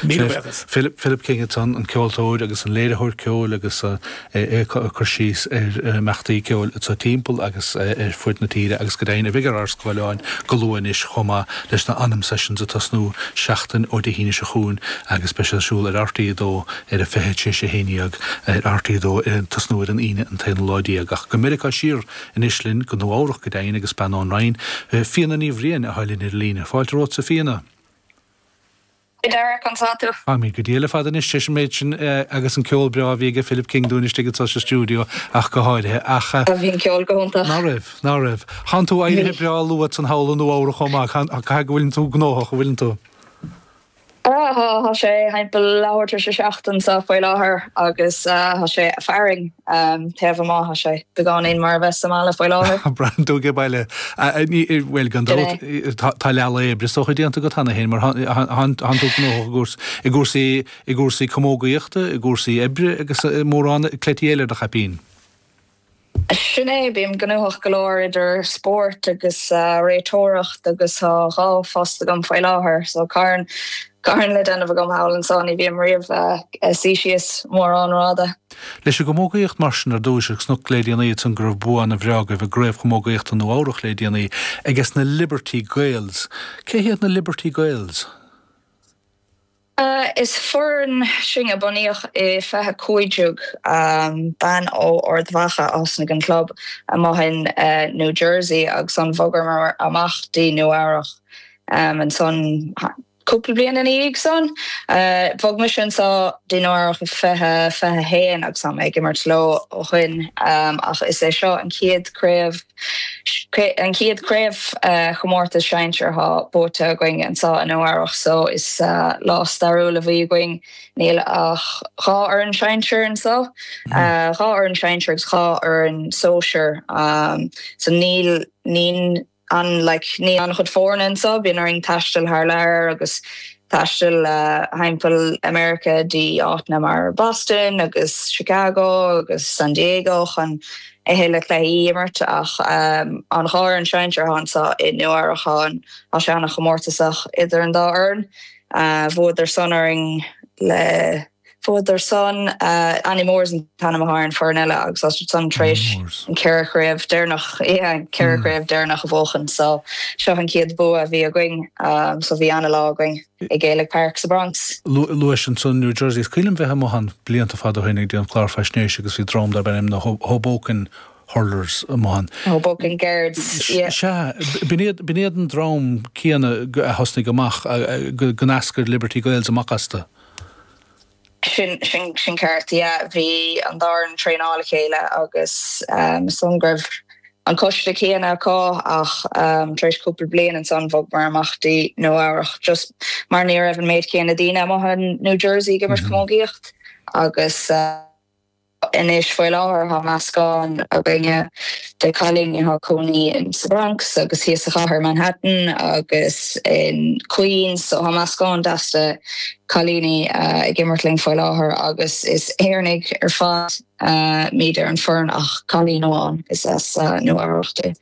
Míle buíochas. Philip King ansan an ceoltóir agus an léiritheoir ceoil agus é ag cur síos ar na himeachtaí ceoil atá timpeall agus ar fud na tíre agus go deimhin a bheidh ar ár scáileáin go luath anois chomh maith leis na Anam Sessions ag tosnú seachtain ó Dé hAoine seo chugainn agus beidh siad ar siúl ar RTÉ2 ar a fiche tar éis a haon déag ar RTÉ2 ag tosnú ar an Aoine an t-aonú lá déag ach go Meiriceá siar anois linn go Nua Eabhrach go deimhin agus bean ón Rinn Fíona Ní Bhriain atá linn ar an líne. Fáilte romhatsa Fíona. Hi Dara, conas tá tú? Tá mé go diail ar fad anois leis an méid sin agus an ceol breá a bhí aige Philip King dúinn istigh anso sa stiúideo ach go háirithe ach. Bhí an ceol go hiontach. Ná raibh, ná raibh. Thánn tú éirithe breá luath ansan thall i Nua Eabhrach chomh maith, caithfidh go bhfuileann tú gnóthach, an bhfuileann tú? Tá sé thimpeall leath uair tar éis a seacht anso faoi láthair agus tá sé ag fearthainn. An taobh amuigh, tá sé beagáinín mar a bheith sa mbaile faoi láthair. Braitheann tú age baile. Bhuel, gan dabht, tá leathlá oibre is dócha déanta agat cheana féin mar tá tú gnóthach i gcúrsaí camógaíochta, i gcúrsaí oibre agus mórán cleití eile ar do chaipín. Sin é, bím gnóthach go leor idir spórt agus réiteoireacht agus tá dhá phost agam faoi láthair so, carn Carn le déanamh agam thall ansan ní bhím riamh a' suí síos mórán ráithe. Leis an gcamógaíocht mar sin ar dtúis agus chonac le déanaí ansan go raibh bua ana bhreá agaibh i gCraobh Chamógaíochta Nua Eabhrach le déanaí ages na Liberty Gaels. Cé hiad na Liberty Gaels? Is foireann sinn a bunaíodh i fiche cúig déag. Bean ó Ard Mhacha a thosnaigh an club amuigh in New Jersey agus an bhogamar amach dtí Nua Eabhrach. Ansan, cúpla bliain ina dhiaidh san, bhog mise anso dtí Nua Eabhrach 2021 agus tá mé ag imirt leo ó shoin ach is é seo an chéad craobh, an chéad chraobh chomórtas sinsear atá buaite againn anso i Nua Eabhrach so is lá stairiúil a bhí againn. Níl ach dhá fhoireann sinsear anso, dhá fhoireann sinsear agus dhá fhoireann sóisear so níl, níl, an, like, níl an-chuid foirne anso, bíonn orainn taisteal thar lear agus taisteal thimpeall America dtí áiteanna mar Boston agus Chicago agus San Diego chun a thuilleadh cluichí a imirt ach an dhá fhoireann sinsear anso i Nua Eabhrach tá sé an-chomórtasach idir an dá fhoireann. Bhuadar san orainn le. Fuadar san Annie Moores an t-ainm athá ar an foireann eile agus iad san tar éis an ceithre chraobh deireanach, yeah, an ceithre chraobh deireanach a bhuachan. So, seo an chéad bua a bhí againn. So, bhí an-lá againn i Gaelic Park sa Bronx. Luais ansan New Jersey. Is cuimhin liom bheith amuigh ann blianta fada ó shin ag déanamh clár faisnéise agus bhí dream darb ainm na Hoboken Hurlers amuigh ann. Hoboken Guards, yeah. Sea, b'in iad an dream céanna a thosnaigh amach go n-eascair Liberty Gaels amach astu. Sin, sin, sin ceart, yeah. Bhí an dá fhoireann ag traenáil le chéile agus is dóigh go raibh an coiste céanna acu ach tar éis cúpla bliain ansan bhogamar amach dtí Nua Eabhrach just mar ní raibh an méid céanna daoine amuigh in New Jersey ag imirt camógaíocht agus, Anois faoi láthair tá meascán againne de chailíní atá cónaí in sa Bronx agus thíos sa chathair Manhattan agus in Queens so tá meascán deas de chailíní ag imirt linn faoi láthair agus is Éireannaigh ar fad muid ar an foireann ach cailín amháin is as Nua Eabhrach di.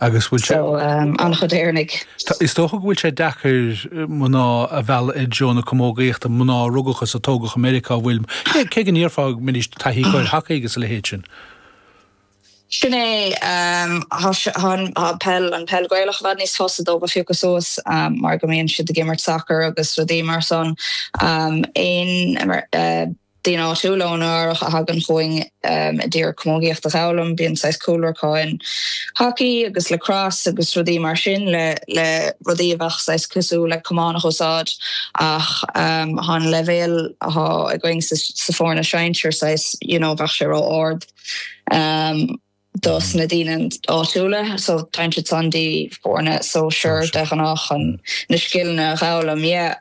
Agus bhfuil, so an-chuid Éireannaigh. Is dócha go bhfuil sé deacair mná a mhealladh i dtreo na camógaíochta, mná a rugadh is a tógadh i Meiriceá, an bhfuil? Cé go ndéarfá go mbeidís taithíoch ar hacaí agus a leithéid sin. Sin é. Tá an peil Ghaelach i bhfad níos fusa dóibh a phiocadh suas mar go mbíonn siad ag imirt sacair agus rudaí mar san. daoine áitiúla ó Nua Eabhrach a thagann chugainn a d'iarraidh camógaíocht a dh'fhoghlaim, bíonn saghas cúlra acu in hockey agus lacrosse agus rudaí mar sin le le rudaí a bheadh saghas cosúil le camán a úsáid ach thá an leibhéal athá againn sa sa foirne sinsear saghas you know bheadh sé ró ard. dos na daoine áitiúla, so téann siad san dtí foirne sóisear de ghnáth chun na scileanna a dh'fhoghlaim yeah.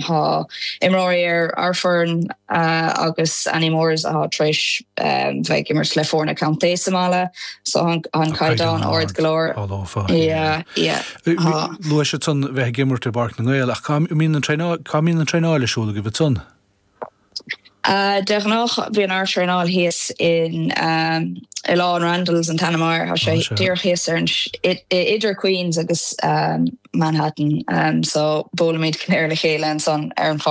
Thá imreoirí ar ár foireann agus Annie Moores athá tar éis bheith ag imirt le foirne contae sa mbaile, so thá an caighdeán ard go leor. all over, yeah, yeah, thá. Luais ansan bheith ag imirt i bPáirc na nGael, ach cá mbíonn an traenáil ar siúl agaibh ansan? De ghnáth bíonn ár traenáil thíos in Oileán Randalls, an t-ainm air, tá sé díreach thíos ar an, idir Queens agus Manhattan, so buailimid go léir le chéile ansan ar an charr.